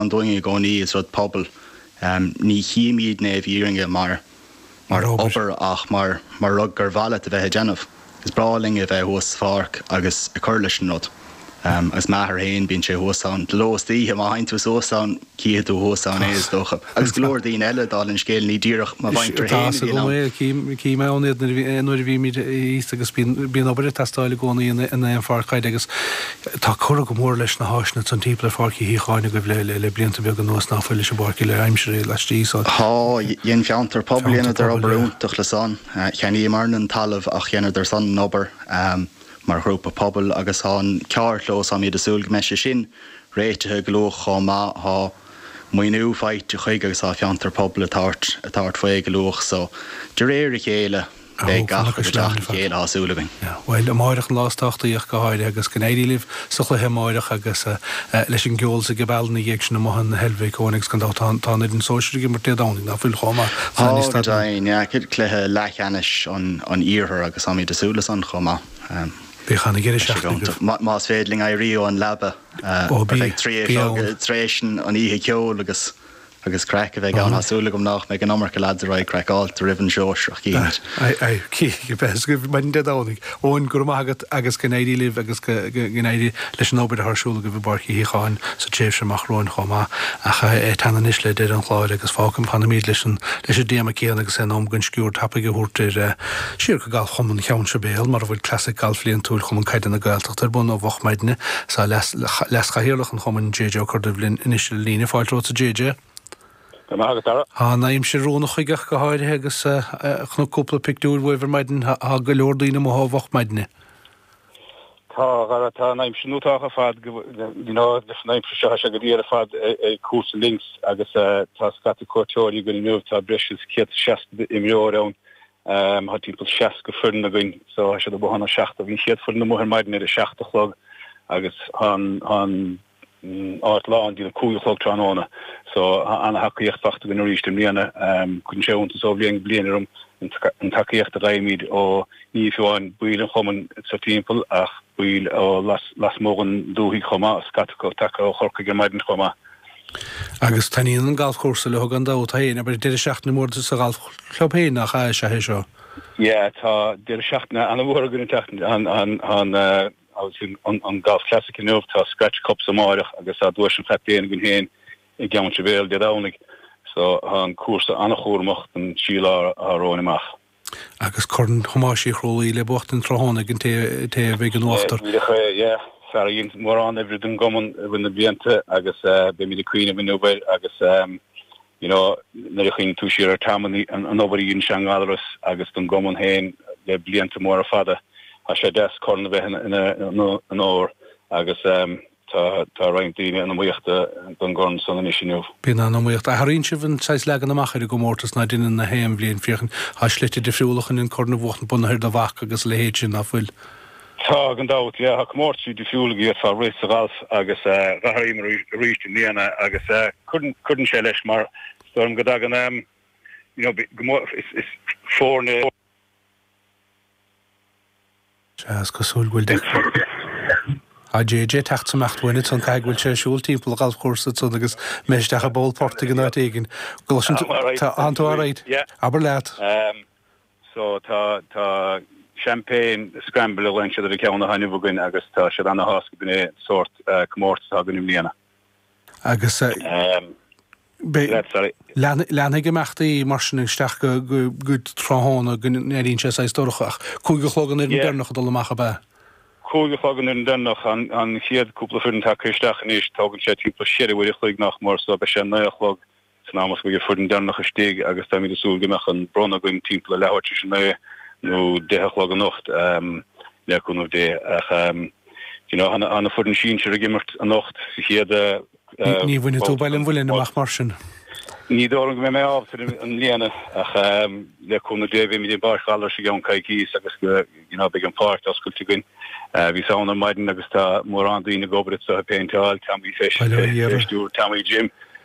an dúinn i gcónaí, is rud pobail. Ní chímíd na fírinne é mar obair ach mar rud gur mhaith leat a bheith ag déanamh. Is breá linn a bheith thuas sa pháirc agus ag cur leis an rud. Agus m'athair féin, bíonn sé thuas ann de ló is d'oíche, má theigheann tú suas ann, cífidh tú thuas ann é, is dócha. Agus go leor daoine eile, dála an scéil, ní díreach mo mhuintir féin a bhíonn ann. Is deas agam é, cím mé ann iad nuair a bhímíd thíos agus bíonn obair ag teastáil i gcónaí in aon pháirc caide agus Tá curtha go mór leis na háiseanna timpeall ar Pháirc Uí Shíocháin agaibh le blianta beaga anuas nach bhfuil leis an bpáirc uile aimsire laistigh san. Tá, dhein Fiontar Pobail dheineadar obair iontach le san. Cheannaíomairne an talamh ach dheineadar san an obair mar ghrúpa pobail agus thá an carrchlós, tháimid ag súil go mbeidh sé sin réitithe go luath chomh maith. Thá maoiniú faighte chuige agus thá Fiontar Pobail ag tabhairt faoi go luath so de réir a chéile. Beidh gach rud ag teacht le chéile tá súil againn. Bhuel, amárach an lá is tábhachtaí ach go háirithe agus go n-éirí libh sa chluiche amárach agus leis an gceol is an gcibeal ina dhiaidh sin amuigh in Heilbhic, Eoin, agus gan dabht tá an fhoireann sóisir ag imirt Dé Domhnaigh, nach bhfuil, chomh maith? Tá, go deimhin, cluiche leathcheannais an iarthair agus táimid ag súil le san chomh maith. Beidh ana-dheireadh seachtaine agaibh. Más féidir linn éirí ón leaba, beidh tar éis an oíche cheoil agus. Agus craic a bheidh ann, tá súil agam nach mbeidh an iomarca leads róchraiceáilte roimh an sóisear. Cinn tinn a bheas agaibh maidin Dé Domhnaigh. Eoin, go raibh maith agat agus go n-éirí libh agus go n-éirí leis an obair atá ar siúl agaibh i bPáirc Uí Shíocháin sa tréimhse amach romhainn chomh maith. Ach é ag teannadh anois le deireadh an chláir agus fágfam, fanfaimid leis an leis an dtéama céanna agus é in am dúinn sciuird tapaidh a thabhairt ar siar go Galfchumann Cheann Sibéal mar a bhfuil Clasaic Gailf Bhliantúil Chumann Caide na Gaeltachta. Tá ar bun ó mhoch maidne, is tá Leas-Chathaoirleach an Chumainn, JJ Ó Corduibh, linn anois ar an líne. Fáilte romhat, a JJ. Go maith agat, Dara. Tá an aimsir oiriúnach chuige ach go háirithe agus chonac cúpla pictiúir uaibh ar maidin. Tá go leor daoine amuigh ó mhoch maidne. Tá, a Dhara, tá an aimsir iontach ar fad, you know, leis an aimsir seo tá sé go diail ar fad ag cúrsa links agus tá scata cuairteoirí againn inniu, tá breis is céad seasca imreoir ann Tá timpeall seasca foireann againn so tá siad amuigh óna seacht a' bhí an chéad foireann amuigh ar maidin ar a seacht a' chlog agus tá an áit lán dtí an cúig a' chlog tráthnóna so tá an-tacaíocht fachta againn arís i mbliana. Cuireann sé iontas ó bhliain go bliain orm an tacaíocht a fhaighimid ó ní hamháin baill an chumainn sa timpeall ach baill ó lasmuigh den dúthaigh chomh maith, scata acu tagtha ó Chorcaigh ar maidin chomh maith. Agus taitníonn an galfchúrsa leo gan dabht féin, abair, deireadh seachtaine mór sa ghalf chlub féin, nach ea? Is ea é seo. Yeah, tá deireadh seachtaine an-mhór againn an tseachtain seo, an Golf Classic inniu, tá Scratch Cups amárach agus tá duais an chaptaein againn féin i gCeann Sibéal Dé Domhnaigh, so tá an cúrsa an-chúramach don trí lá romhainn amach. Agus Corn Thomáis Uí Chrualaoí le buachtaint tráthnóna ag an té a bheidh in uachtar. Yeah. Fear a dhein mórán oibre don gcumann i rith na blianta agus beimid ag cuimhneamh inniu air agus you know nuair a chuimhníonn tú siar ar Tom an obair a dhein sé i nGallaras agus don gcumann féin le blianta móra fada, tá sé deas corn a bheith ina onóir agus eh. Tá roinnt daoine in iomaíocht don gcorn san anois inniu. Bíonn an-iomaíocht. Athraíonn sibh an saghas leagan amach ar an gcomórtas ná deineann, gach aon bhliain, féachaint. Tá slite difriúla chun an corn a bhuacht, bunaithe ar do bhac agus a leithéid sin, ná fuil? Tá, gan dabht. Yeah, tá comórtaisí difriúla go bhféadfá imirt sa ghalf agus athraíomar arís i mbliana agus cuireann sé leis mar, is dóigh liom go dtagann, you know, go mór, is foirne, Seans cosúil go bhfuil de. Tá JJ ag teacht isteach againn, an fhaid go bhfuil sé ag siúl timpeall a ghalfchúrsa san agus mé isteach i bpoll portaigh in áit éigin. Gosh an bhfuil tú alright? Abair leat. Ehm so tá tá champagne scramble a ghlaonn siad ar an gceann atá inniu againn agus tá sé ana-thaitneamhach, b'in é an sórt comórtas atá againn i mbliana. agus leanfaidh imeachtaí mar sin isteach go tráthnóna, go n-éiríonn sé saghas dorcha, ach cúig a chlog an fhoireann deireanach ag dul amach ab ea? Cúig a chlog an fhoireann deireanach, an chéad cúpla foireann tagtha isteach anois, tógann sé timpeall cheithre uair a chloig nach mór, so beidh sé naoi a chlog San am is go mbeidh an fhoireann deireanach istigh agus táimid ag súil go mbeadh an bronnadh againn timpeall a leathuair tar éis a naoi nó deich a chlog anocht, le cúnamh Dé, ach you know tá an fhoireann sinsir ag imirt anocht sa chéad babhta. Ní bhainfidh tú Baile an Mhuilinn amach mar sin? Ní dóigh liom go mbeidh mé ábalta i mbliana ach le cúnamh Dé beimid i bPáirc Ghallarais i gceann coicíos agus you know beidh an pháirc oscailte againn. Bhíos ann ar maidin agus tá mórán daoine ag obair anseo ag péinteáil, Tommy Fish ag stiúradh, Tommy Jim.